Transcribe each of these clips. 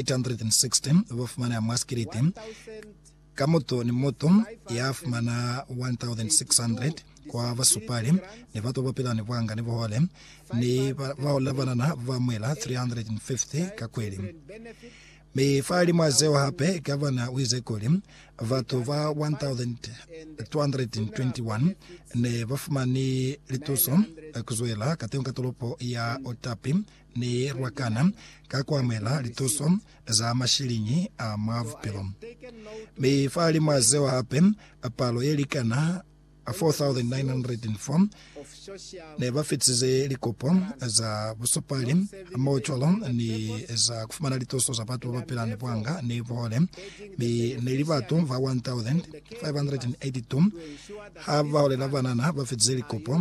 816 ba fumana mwa sikiliti, ka mutu ni mutu ya fumana 1,600 kwa basupali, ni batu ba pila ni bwanga ni buhole, ni bao la banana ba mwela 350 ka kweli. Mi fahalimwa zeo hape, gavana uize kuli, batu ba 1,221 ne ba fumani lituso kuzwela katengo ka tolopo ya Otapi, Ni lwakana ka kuamuhela lituso za mashiliñi a mwa bupilo. Mi fahalimw'a zeo hape, palo ye likana 4,904 ne ba fitize likopo za busupali hamohocwalo ni za kufumana lituso za batu babapila ni buanga ni buhole, mi ne li batu ba 1,582 ha baholela banana ba fitize likopo.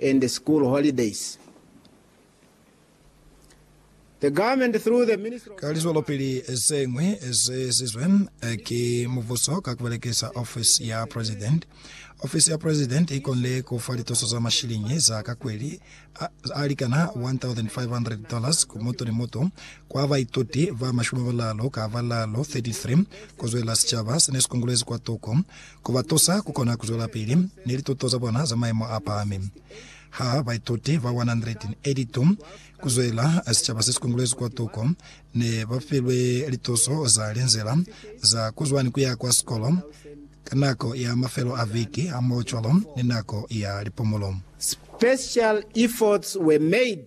and school holidays. The government through the Ministry of Ka lizwelopili ze ñwi ze ezizwe ki mubuso ka ku belekisa ofisi ya President, ofisi ya President i konile ku fa lituso za mashiliñi za ka kweli a, a likana $1,500 ku mutu ni mutu kwa baituti ba mashumi a balalu ka balalu, 33, ku zwelela sicaba se ne si kungulezi kwa tuko. ku ba tusa ku kona ku zwelapili ni lituto za bona za maimo a pahami. Ha baituti ba 182 ku zwela sicaba se si kongolwezi kwa tuko ne ba filwe lituso za linzila za ku zwa ni ku ya kwa sikolo ka nako ya mafelo a viki hamoho cwalo ni nako ya lipumulo. Special efforts were made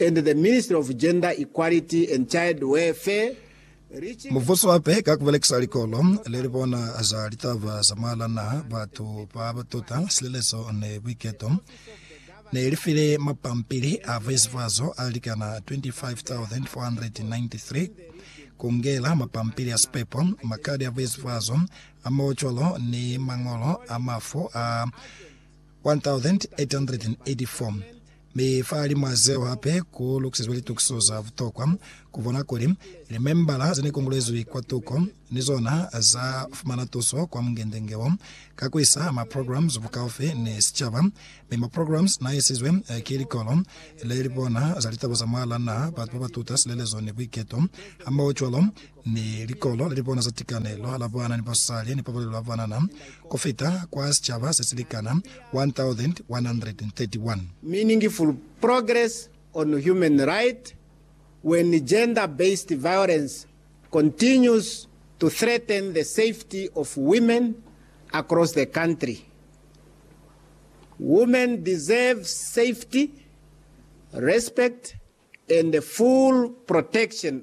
and the Ministry of Gender Equality and Child Welfare, Mubuso hape ka ku belekisa Likolo le li bona za litaba za mwahal'a naha, batu ba ba tuta silelezo ni buiketo, ne li file mapampili a buizibazo a likana 25,493, ku ngela mapampili a sipepo, makadi a buizibazo a maucolo ni mañolo a mafu a 1884, mi fa limwa zeo hape ku lukisizwe litukiso za butokwa ku bona kuli limembala ze ne kongolezwi kwa tuko ni zona za fumana tuso kwa mungende-nge wo ka ku isa maprograms bukaufi ni sicaba, mi maprograms n'a isizwe ki likolo le li bona za litaba za mwa la naha, batu ba ba tuta silelezo ni buiketo, hamohocwalo ni likolo li bona za tikanelo la bana ni basali ni pabalelo ya banana ku fita kwa sicaba se si likana 1,131. Meaningful progress on human right when gender based violence continues to threaten the safety of women across the country. Women deserve safety, respect and full protection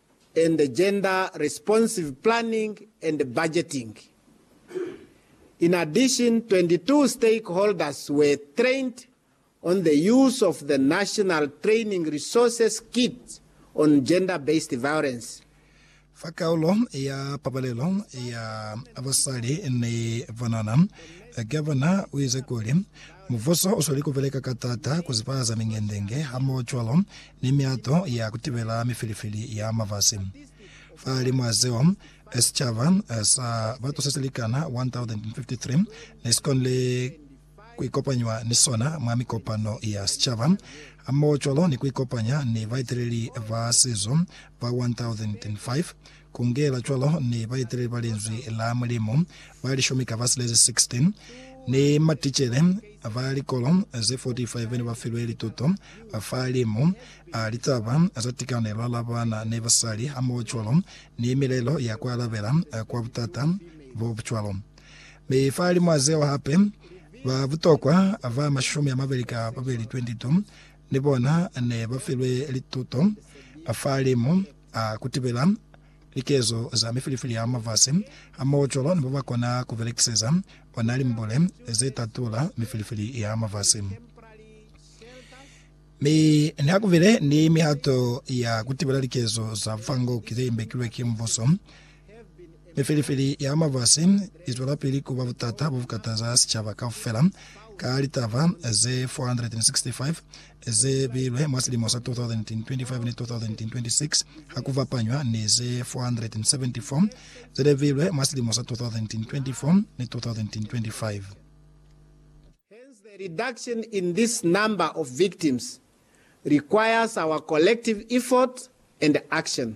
and Gender Responsive Planning and Budgeting. In addition, 22 stakeholders were trained on the use of the National Training Resources Kit on Gender-Based Violence. Fa kaulo ya pabalelo ya basali ni banana, Gavana uize kuli, Mubuso usweli kubeleka ka taata kuzibahaza mingendenge hamoho cwalo ni miato ya ku tibela mifilifili ya mafasi. Fahalimw'a zeo, sicaba sa batu se si likana 1,053 ne si konile ku ikopanywa ni sona mwa mikopano ya sicaba, hamohocwalo ni ku ikopanya ni baeteleli ba sizo ba 1,005 Ku ngela cwalo, ni baeteleli ba Linzwi la Mulimu ba lishumi ka ba silezi, 16, ni maticele ba likolo ze 45 bene ba filwe lituto fa limu a litaba za tikanelo la bana ni basali hamohocwalo ni milelo ya ku alabela kwa butata bo bucwalo. Mi fahalimw'a zeo hape, ba butokwa ba mashumi a mabeli ka babeli, 22, ni bona ne ba filwe lituto fa limu. a kutibela likezo za mifilifili ya mafasi hamoho cwalo ni babakona kubelekiseza ona limbule ze tatula mifilifili ya mafasi. Mi nihakubile ni mihato ya kutibela likezo za fango ki ze imbekilwe ki mbuso, Mifelifeli ya mafasi izwelapili kuba butata bobukataza sicaba kaufela ka litaba ze 465 ze bilwe mwa silimo sa 2025 ni 2026 hakufapanywa ni ze 474 zelebilwe mwa silimo sa 2024 ni 2025. Hence the reduction in this number of victims requires our collective effort and action.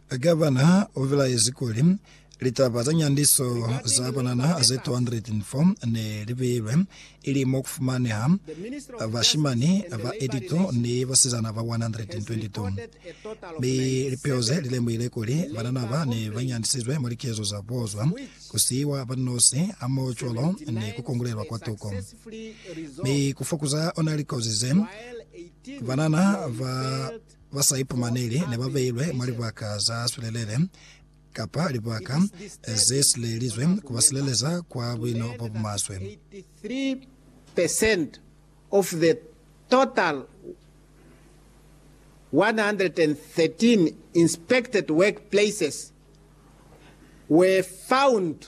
Gavana u bilaezi kuli, Litaba za nyandiso za banana ze 204 ne li beilwe, ili mo ku fumaneha bashimani ba 82 ni basizana ba 122. Mi lipeho ze li lemuhile kuli banana ba ne ba nyandisizwe mwa likezo za bozwa, ku siiwa ba li nosi, hamoho cwalo ni ku kongulelwa kwa tuko. Mi ku fokuza ona likozi ze banana ba ba sa ipumaneli ne ba beilwe mwa libaka za swelelele kapa libaka ze silelizwe ku ba sileleza kwa buino bo bumaswe. 83 percent of the total 113 inspected workplaces were found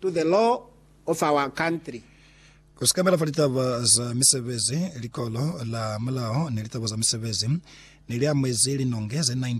to the law of our country. Ku sikamela fa litaba za misebezi, Likolo la Mulao ni litaba za misebezi ne li amuezi linonge ze 19.